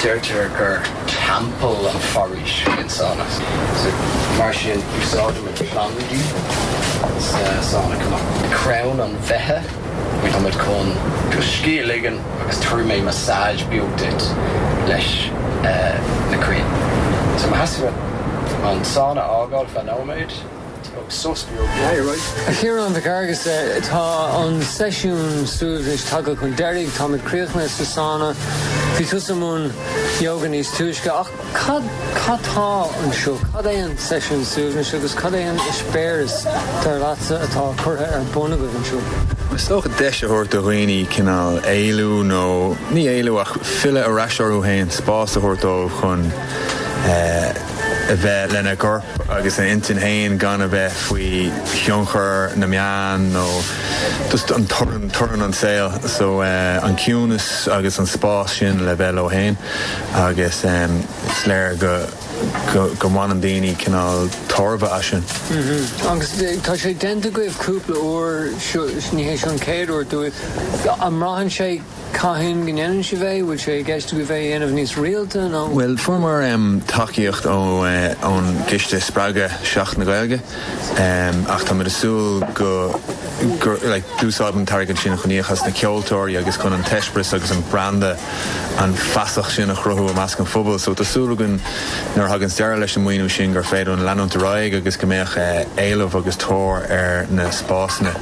Deirtear gur teampall an foraois an sána, mar sin úsáidimid plandaí sa sána chomh maith. Crann an bheithe a gheobhaimid chun do scíth a ligean agus tabharfaidh mé massage beag duit leis na crainn. So má theastaíonn uait an sána a fhágáil feadh nóiméad, Tóg sos beag deiridh. A Chiaráin Mhic Fheargusa, tá an seisiún suaimhnis tagtha chun deiridh. Táimid críochnaithe sa sána. Bhí tusa i mbun yoga níos túisce. Ach cad tá anseo? Cad é an seisiún suaimhnis agus cad é an eispéireas, dar leatsa, atá curtha ar bun agaibh anseo? Is dócha deis a thabhairt do dhaoine cineál éalú nó, ní éalú ach filleadh ar ais orthu féin, spás a thabhairt dóibh chun eh, a bheith lena gcorp agus a intinn féin gan a bheith faoi thionchar na meán nó just an torann, torann an saol. So an ciúnas agus an spás sin le bheith leo féin agus is léir go, go, go mbaineann daoine cineál tairbhe as sin. Mhm. Agus tá sé déanta agaibh cúpla uair, seo, ní hé seo an chéad uair, dúirt, an mbraitheann sé, Cathain go ndéanann sibh é? Bhfuil sé i gceist agaibh é a dhéanamh níos rialta nó? Bhuel, fuaireamar tacaíocht ón gCiste Spreagtha Seachtain na Gaeilge ach táimid ag súil go d'úsáidfimid an t-airgead sin chun íoc as na ceoltóirí agus chun an t-eispéireas agus an branda an feasacht sin a chruthú i measc an phobail. So tá súil againn nuair a thaganns deireadh leis an maoiniú sin gur féidir linn leanúint ar aghaidh agus go mbeadh éileamh agus tóir ar na spásanna.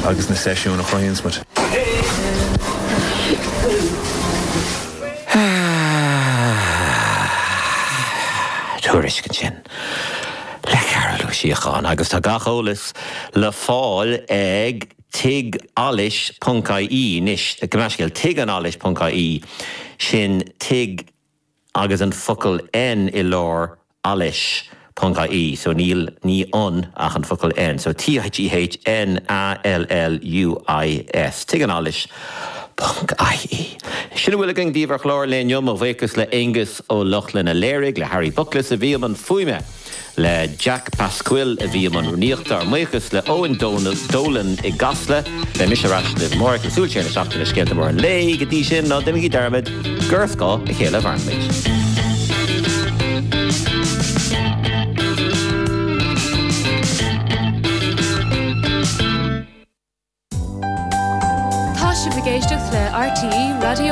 agus na seisiúin a chruthaíonns muid. Tuairisc ansin le Cathal Ó Síocháin agus tá gach eolas le fáil ag Tigh Alluis.ie anois, gabh mo leithscéal, Tigh 'n Alluis.ie, sin tigh agus an focal N i lár alluis.ie so níl níl ann ach an focal N so TIGHNALLUIS Tigh 'n Alluis.ie Sin a bhfuil againn daoibh ar chlár an lae inniu. Mo bhuíochas le Aonghus Ó Lochlainn a léirigh le Harry Bookless a bhí i mbun fuaime. Le Jack Pasquill a bhí i mbun rúnaíochta, ár mbuíochas le Eoin Dolan i gCasla. Beidh mise ar ais libh amárach le súil siar na seachtaine le scéalta móra an lae, go dtí sin ná déanaigí dearmad gur ar scáth a chéile a mhairimid. Tá sibh ag éisteacht le RTÉ Raidió na.